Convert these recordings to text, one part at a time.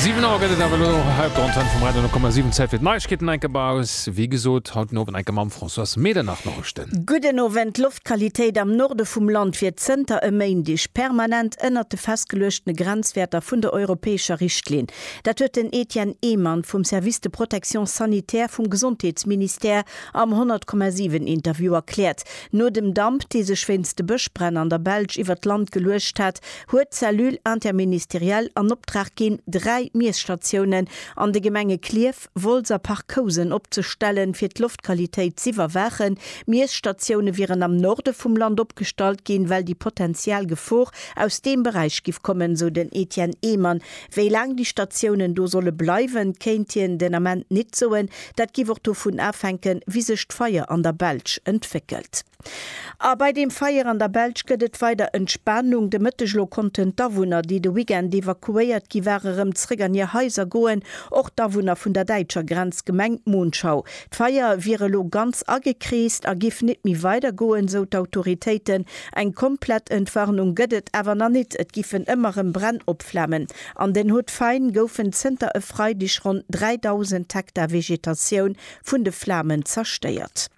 Siwen Auer gëtt et awer elo och hei op der Antenn vum Radio 10,7. Zäit fir d'Neiegkeeten enk ab aus, wéi gesot, haut den Owend enk mam Françoise Medernach-Norrichten. Gudden Owend, D'Loftqualitéit am Norde vum Land wier zënter e Méindeg permanent ënnert de festgeluechtene Grenzwäerter vun der europäescher Richtlinn. Dat huet den Etienne Ehmann vum Service de protection sanitaire vum Gesondheetsministère am 100,7 Interview erkläert. No dem Damp, dee sech wéinst de Bëschbränn an der Belsch iwwert d'Land geluecht hat, huet d'Cellule interministérielle an Optrag ginn, dräi Miesstatiounen an de Gemenge Klierf, Wolz a Parc-Housen opzestellen, fir d'Loftqualitéit z'iwwerwaachen. Miesstatioune wieren am Norde vum Land opgestallt ginn, well déi potential Gefor aus deem Beräich giff kommen, sou den Etienne Ehmann. Wéi laang déi Statiounen do solle bleiwen, kéint hien den Ament nit soen. Dat giff och dovun afänken, wéi sech d'Feier an der Belsch entwéckelt. A bei deem Feier an der Belsch gëtt et weider Entspanung. De Mëtteg elo konnten d'Awunner, déi de Weekend evakuéiert gi ware, rëm zréck an hir Haiser goen, och d'Awunner vun der däitscher Grenzgemeng Monschau. D'Feier wier elo ganz agekreest a giff nit méi weider goen, sou d'Autoritéiten. Eng komplett Entwarnung gëtt et awer nach nit. Et giffen ëmmer rëm Bränn opflamen. An den Hautes-Fagnes goufen zënter e Freideg ronn 3.000 Hektar Vegetatioun vun de Flamen zerstéiert.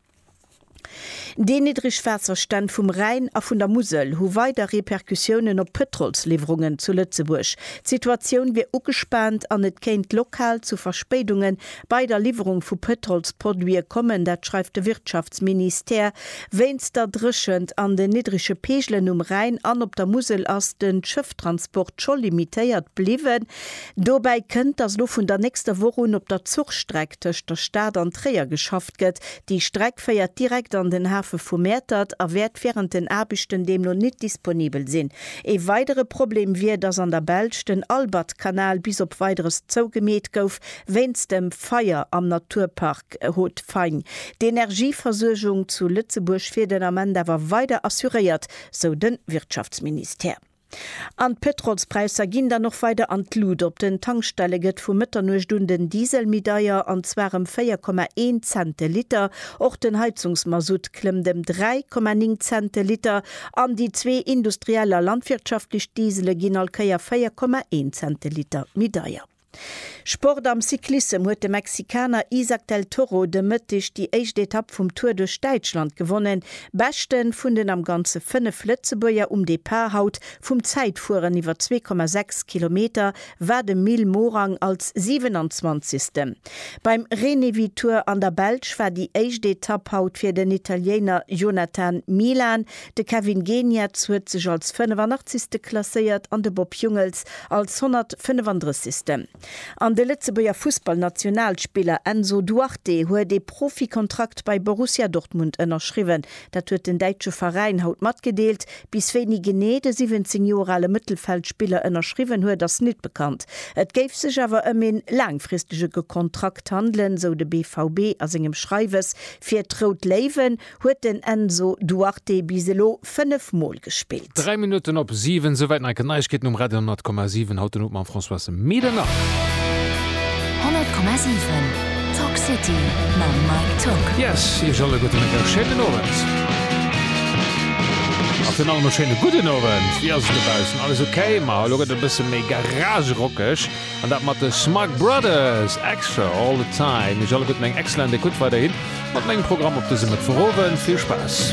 Déi niddreg Waasserstänn vum Rhäin a vun der Musel hu weider Repercussiounen op d'Pëtrolsliwwerungen zu Lëtzebuerg. D'Situatioun wier ugespaant an et kéint lokal zu Verspéidunge bei der Liwwerung vu Pëtrolsproduite kommen. Dat schreift de Wirtschaftsministère. Wéinst der Dréchent an den niddrege Peegelen um Rhäin an op der Musel ass de Schëfftransport scho limitéiert bliwwen. Dobäi kënnt, datt elo vun der nächster Woch un op der Zuchstreck tëscht der Stad an Tréier geschafft gestoppt gëtt. Déi Streck féiert direkt an den Hafe vu Mäertert a wäert wärend den Aarbechten deemno nit disponibel sinn. Ee weidere Problem wier, dass an der Belsch den Albertkanal bis op Weideres zougemeet gouf wéinst dem Feier am Naturpark Haut-Faing. D'Energieversuergung zu Lëtzebuerg wier den Ament awer weider assuréiert, sou de Wirtschaftsministère. An d'Pëtrolspräisser ginn dann och weider an d'Lut. Op den Tankstelle gëtt vu Mëtternuecht un den Diesel méi deier, an zwar ëm 4,1 Cent de Liter. Och den Heizungsmasutt klëmmt ëm 3,9 Cent de Liter an déi zwee industriell a landwirtschaftlech Diesele ginn all Kéier 4,1 Cent de Liter méi deier. Sport Am Cyclissem huet de Mexikaner Isaac del Toro de Mëtteg déi éischt Etapp vum Tour duerch Däitschland gewonnen. Beschte vun den am Ganze 5 Lëtzebuerger um Depart haut vum Zäitfueren iwwer 2,6 Kilometer war de Mil Morang als 27. Beim Renewi Tour an der Belsch war déi éischt Etapp haut fir den Italiener Jonathan Milan De Kevin Geniets huet sech als 85. klasséiert an de Bob Jungels als 135. An de Lëtzebuerger Fussballnationalspiller Enzo Duarte huet ee Profikontrakt bei Borussia Dortmund ënnerschriwwen. Dat huet den däitsche Veräin haut matgedeelt. Bis wéini genee de 17 Joer ale Mëttelfeldspiller ënnerschriwwen huet, ass nit bekannt. Et géif sech awer ëm een laangfristege Kontrakt handelen, sou de BVB a sengem Schreiwes fir d'Rout Léiwen. huet den Enzo Duarte bis elo 5 Mol gespillt. Dräi Minutten op siwen, souwäit Neiken Neiegkeeten um Radio 10,7 haut den Owend mam Françoise Medernach. 10,7 Talk City mam Mike Tock. Yes, iech all e gudde Mëtteg, schéinen Owend. A virun allem e schéine gudden Owend. Wéi ass et dobaussen? Alles ok? Ma elo gëtt et e bësse méi garagerockeg. An dat mat de Smug Brothers, Extra, All the Time. Iech alleguerten eng excellent Ecoute weiderhin mat mengem Programm op dësem Mëttwochowend. Vill Spaass!